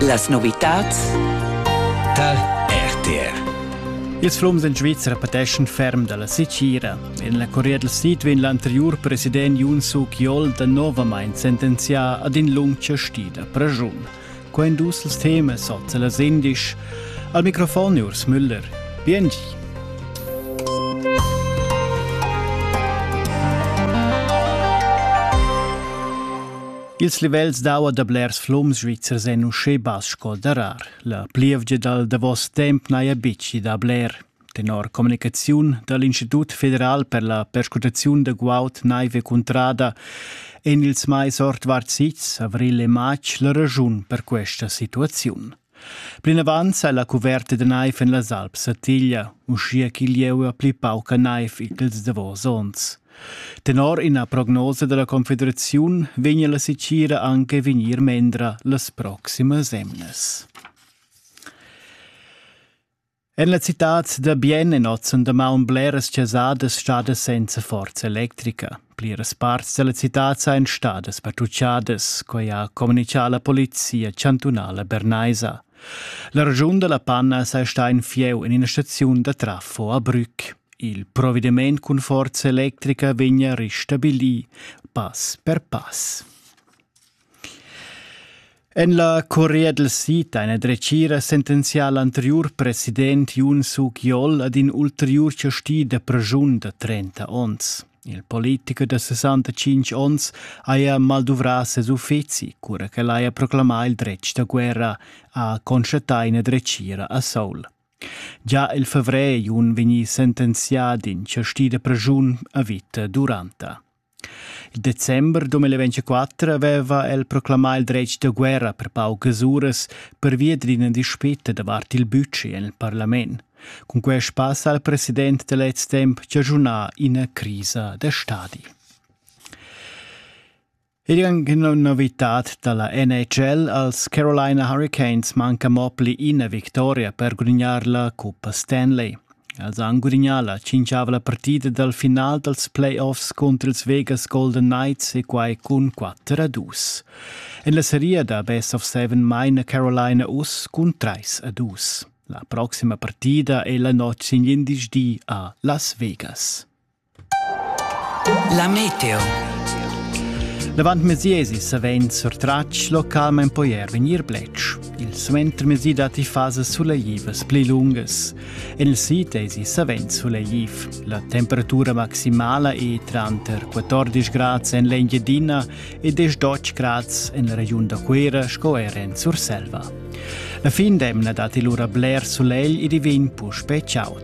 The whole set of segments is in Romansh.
Las novitads tar RTR. Ils flums en Svizra pateschan ferm dalla secira. En la Corea del Sid vegn l'anteriur president Yoon Suk Yeol danovamain sentenzià ad in lung chastida pregiun. Quai en dus els temas sot las indisch. Al microfon Urs Müller. Biengi. Ils livels d'aua da blers flums svizzers èn uschè bass sco darar. La plievgia dal davos temp n'haja betg dà bler. Tenor communicaziun da l'Institut federal per la perscrutaziun da guaud, naiv e cuntrada èn ils mais ordvart sits, avrigl e matg, la raschun per questa situaziun. Plinavant sa la cuverta da naiv en las Alps satiglia, uschia ch'il lieu ha pli pauca naiv ch'ils davos onns. Tenor ina prognosa da la Confederaziun vegnia la setgira anche a vegnir mendra las proximas emnas. En la citad da Bien è oz en damaun bleras chasadas stadas senza forza electrica. Pliras parts da la citad sajan stadas patrutschadas, quai ha communitgà la polizia chantunala bernaisa. La regiun da la Panna saja stà in fieu en ina staziun da trafo a Brück. Il provvediment cun forza electrica vegnia restabilì pass per pass. En la Corea dal Sid ha ina dretgira sentenzia l'anteriur president Yoon Suk Yeol ad in ulteriur chasti da preschun da 30 onns. Il politicher da 65 onns haja malduvrà ses uffizi, cura ch'el haja proclamà il dretg da guerra, ha constatà ina dretgira a Seoul. Già il favrer è un vegnì sentenzià d'in chasti da preschun a vita duranta. Il december 2024 aveva el proclamà il dretg da guerra per paucas uras pervia d'ina dispita davart il budget en il parlament. Cun quai spassa al president da lez temp chaschunà ina crisa da stadi. Ed anche novitad dalla NHL als Carolina Hurricanes manca mo pli ina victoria per gudignar la Coppa Stanley. Els han gudignà la tschintgava la partida dal final dals playoffs cunter ils Vegas Golden Knights e quai cun 4 a 2. En la seria da Best of Seven maina Carolina uss cun 3 a 2. La proxima partida è la notg sin glindesdi a Las Vegas. La meteo. Davant mesiesi savend surtratg localmain poier vegnir bletsch. Il suentermesi datti fasas suleivas pli lungas. En il sid esi savend suleiv. La temperatura maximala è tranter 14 grads en l'Engiadina e 10 grads en la regiun da Cuera sco er en Surselva. La fin d'emna datti lura bler sulegl ed i vegn puspè chaud.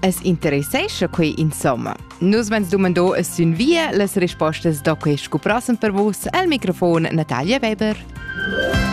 Es interessescha quei insomma? Nus vens dumando e sün via las rispostas da quei scuprassen per vus al microfon Natalia Weber.